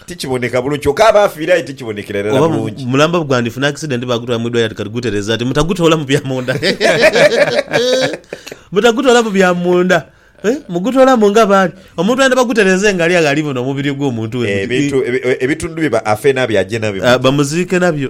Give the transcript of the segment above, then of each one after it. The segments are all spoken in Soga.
Tikiboneka bulungi kyoka aba afiire aye tikibonekera irala Oba bulungi. mulamba bwandifuna accident bagutwala mwidwaliro ati kati gutereza ati mutagutoolamu bya munda. Mutagutoolamu bya munda. Eh, mugutoolamu nga bwali. Omuntu ayenda bagutereze nga ali agho ali buno omubiri ogw'omuntu we. Eh, ebintu ebi- ebitundu bye ba- afe nabyo aje nabyo. Ah, bamuziike nabyo.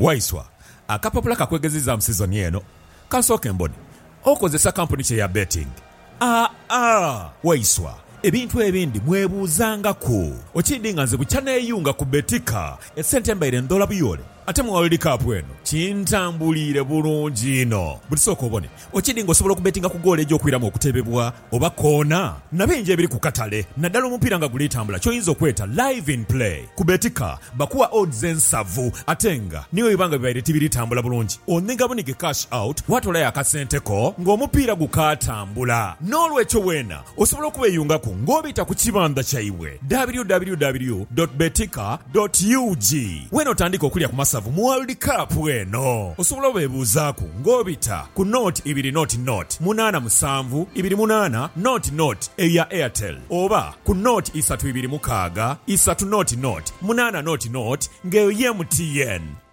Waiswa, akapapula ka kwegeziizaamu sizoni eno ka nsooke mbone okozesa kampuni ki eya Betting. Aa-a, Waiswa, ebintu ebindi mwebuuzangaku. Okiidhi nga nze bukya neeyunga ku Betika, esente mbaire ndhoola buyoole ate mu World Cup eno kintambuliire bulungi inho. Butisooka obone Okidi nga osobola okubetinga ku goolo egy'okwiramu okutebebwa oba koona na bingi ebiri ku katale naddala omupiira nga guli tambula ky'oyinza okweta Live in Play. Ku Betika bakuwa odds ensavu ate nga ni bwe biba nga bibaire tibiri tambula bulungi onhiga bunhige cash out waatoolayo akasente ko ng'omupiira gukaatambula. N'olwekyo weena Osobola okubeyungaku nga obita ku kibandha kyaibwe www dot betika dot ug wenotandiika okulya ku masavu mu World Cup eno. Osobola obebuuzaaku nga obita ku nought ibiri nought nought munaana musanvu ibiri munaana nought nought eyo ya Airtel oba ku nought isatu ibiri mukaaga isatu nought nought munaana nought nought nga eyo ye MTN.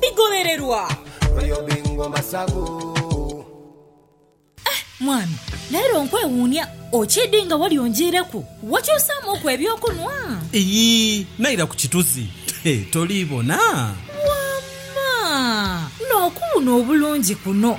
bigholererwa. Eh mwami, leero nkwewuunia okiidhi nga wali onjiireku wakyusaamuuku eby'okunwa. Iyii, naira ku kituzi he toliibona? Wamma! N'okuwuuna obulungi kuno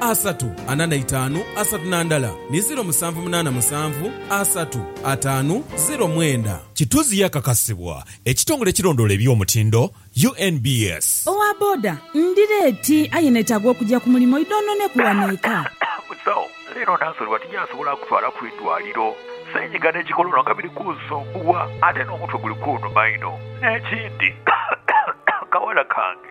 asatu ana na itaanu asatu na ndala ni ziro musanvu munaana musanvu asatu ataanu ziro mwenda. Kituzi yakakasibwa ekitongole ekirondoola eby'omutindo, UNBS. Owa boda, Ndi leeti aye netaaga okugya ku mulimu idhoononeku wano eka. Musawo, Leero Nansoliwa tinyasobola kutwala ku idwaliro. Senyiga n'ekikolonwa nga biri kunsumbuwa ate n'omutwe guli kunuma inho. N'ekindi, akawala kange.